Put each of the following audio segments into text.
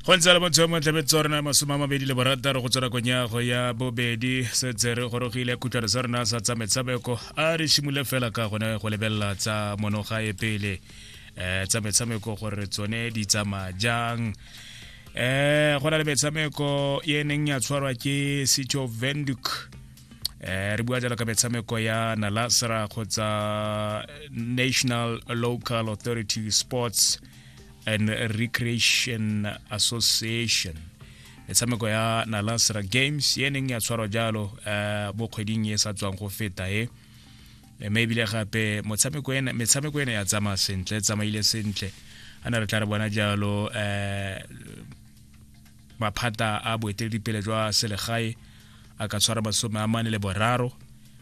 go ntse le motho mo tlebe tsa rona masome a mabedi le borataro go tswela konyago ya bobedi setse re gorogile khutlhano sa rona sa tsa metshameko a re simole fela ka gone go lebelela tsa monogae pele um tsa metshameko gore tsone di tsamaya jang um go na le metshameko e neng ya tshwarwa ke city of venduk eh re bua jalo ka metshameko ya nalasra kgotsa national local authority sports and recreation association metshameko ya nalasra games e neng ya tshwarwa jalo um mo kgweding e sa tswang go feta e mme ebile gape metshameko ena ya tsamaya sentle tsamaile sentle a na re tla re bona jalo um maphata a boeteledipele jwa selegae a ka tshwara masome a mane le boraro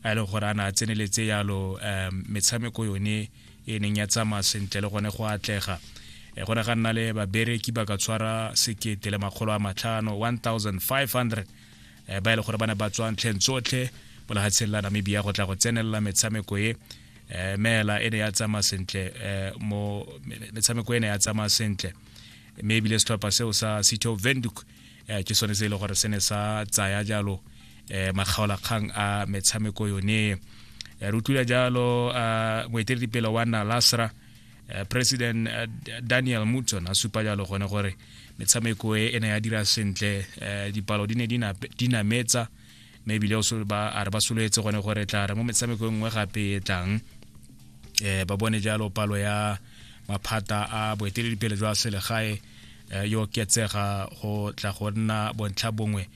a e leng gore a ne a tseneletse yalo um metshameko yone e neng ya tsamaya sentle le gone go atlega e gone ga nna le babereki ba ka tshwara sekete le makgolo a matlhano 1500 eh, ba e le gore ba ne ba tswa ntlheng tsotlhe mo legatsheng la namibia go tla go tsenelela metshameko e eh, meela e ne ya tsamaya sentle eh, mo metshameko e ne ya tsamaya sentle mme ebile setlhopha seo sa city of venduk eh, ke sone se e le gore se ne sa tsaya jalo um eh, makgaolakgang a metshameko yone re utlwile jalo moeteledipele wa nalasra Eh, president eh, daniel mutson a supa jalo gone gore metshameko e e ne ya dira sentle eh, dipalo di ne di nametsa mme ebile a re ba soletse gone gore tla re mo metshameko e nngwe gape e tlang um ba bone jalo palo ya maphata a boeteledipele jwa selegae um yo ketsega go tla go nna bontlha bongwe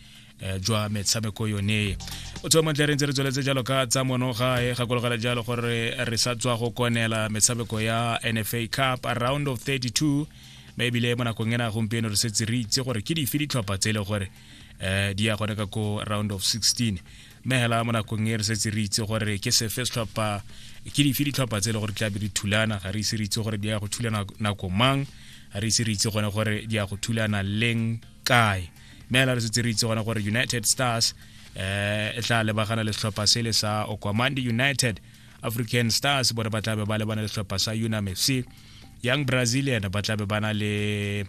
Eh, jwa metshameko yone o tswa montle re ntse re tsweletse jalo ka tsa mono ga e gakologela jalo gore re sa tswa go konela metshameko ya nfa cup round of 32 mme ebile mo nakong ena gompieno re setse re itse gore ke dife ditlhopha tse e le gore um di ya gone ka ko round of 16 mme hela mo nakong e re setse re itse gore ke sefe setlhopha ke dife ditlhopha tse e le gore di tlabe di thulana ga re ise re itse gore di ya go thulana nako mang ga re ise re itse gone gore di ya go thulana leng kae mme hela re setse re itse gone gore united stars um e tla lebagana le setlhopha sele sa okwamandi united african stars bone ba tlabe ba lebana le setlhopha sa unam fc young brazilian ba tlabe ba na le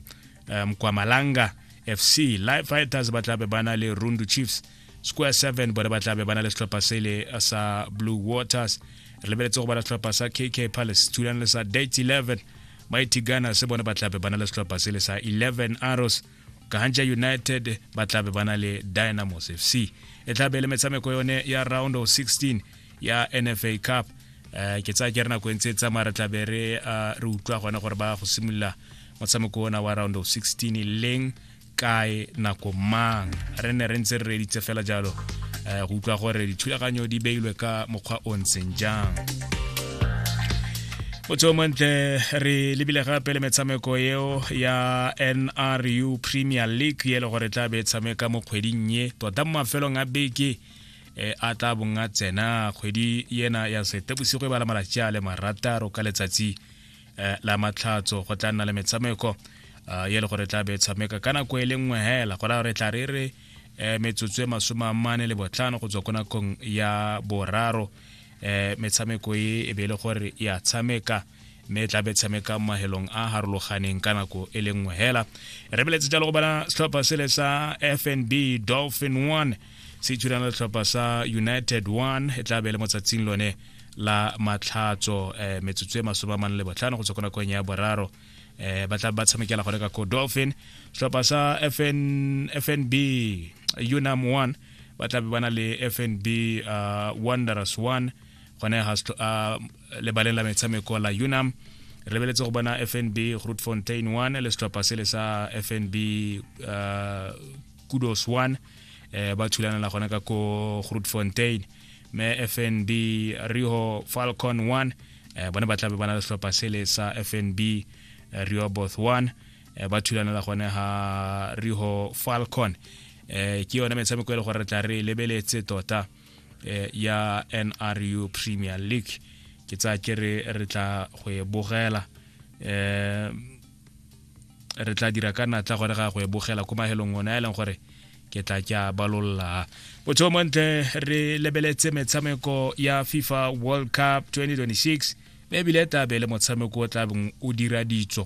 eh, mkwamalanga fc live fighters ba tlabe ba na le rundu chiefs square 7 bone ba tlabe ba na le setlhopha sele sa blue waters re lebeletse go bana setlhopha sa kk palace thulane le sa date 11 mighty ghana se bone ba tlabe ba na le setlhopha sele sa 11 arrows kahanja united ba tlabe ba na le dynamos fc e tlabe le metshameko yone ya round of 16 ya nfa cup um ke tsaya ke re nako e ntse e tsamaya re tlabe re eh, re utlwa gone gore ba go simolola motshameko ona wa round of 16 e leng kae nako mang re ne re ntse re reditse fela jalo um go utlwa gore dithulaganyo di beilwe ka mokgwa o ntseng jang motho montle re lebile gape le metshameko eo ya nru premier league e le gore tla be e tshameka mo kgweding ye tota mo mafelong a beke e a tla bong a tsena kgwedi yena ya setebosigo e bala malatsi a le marataro ka letsatsi e, la matlhatso go tla nna le metshameko e, ye le gore tla be tshameka ka nako e le nngwe hela go raya gore tla re re e, metsotso e masome a mane le botlhano go tswa ko nakong ya boraro um metshameko e e be e le gore ya tshameka mme e tla be tshameka mahelong a harologaneng ka nako e le nngwe hela re beletse jalo go bona setlhopha sele sa fnb dolphin 1 se itshurana setlhopha sa united 1 e tla be le mo tsatsing lone la matlhatso um eh, metsotso e masome a mane le botlhano go tswa ko nakong ya boraro um ba tla ba tshamekela gone ka ko dolphin setlhopha sa FN, fnb unam 1 ba tla be ba na le fnb uh, wanderers 1 gone ga lebaleng la metshameko la unam re lebeletse go bona fnb grootfontein 1 le setlhopha sele sa fnb uh, kudos 1 eh, ba thulanela gona ka ko grootfontein me fnb riho falcon 1 eh, bone ba tlabe ba na le setlhopha sele sa fnb eh, rioboth 1 eh, ba thulanela gone ha riho falcon eh, ke yone metshameko e le gore re tla re lebeletse tota eh, ya nru premier league ke tsaya ke re re tla go e bogela eh re tla dira ka natla gore ga go e bogela ko mahelong one a e leng gore ke tla ke a balolla botho montle re lebeletse metshameko ya fifa world cup 2026 mme ebile e tla be le motshameko o tlabeng o dira ditso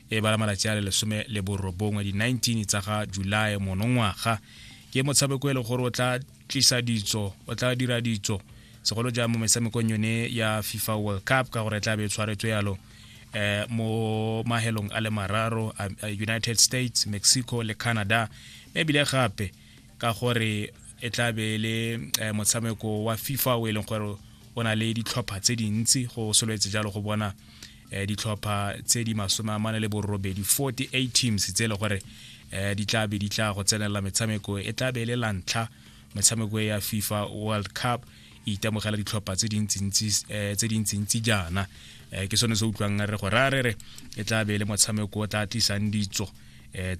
e bala malatsi a le lesome le borobongwe di-19 tsa ga july monongwaga ke motshameko e le gore o tla tlisa ditso o tla dira ditso segolo jang mo metshamekong yone ya fifa world cup ka gore e tla be e tshwaretswe yalo eh, mo mahelong a le mararo united states mexico le canada ebile gape ka gore e tla be e le eh, motshameko wa fifa o e leng gore o na le ditlhopha tse dintsi go soletse jalo go bona eh, ditlhopha tse di masome a mane le borobedi 48 teams tse e le gore eh, di tla be di tla go tsenelela metshameko e tla be e le lantlha metshameko e ya fifa world cup e itemogela ditlhopha tse dintsintsi jaana ke sone se utlwang re go rare re e tla be e le motshameko o tla tlisang ditso um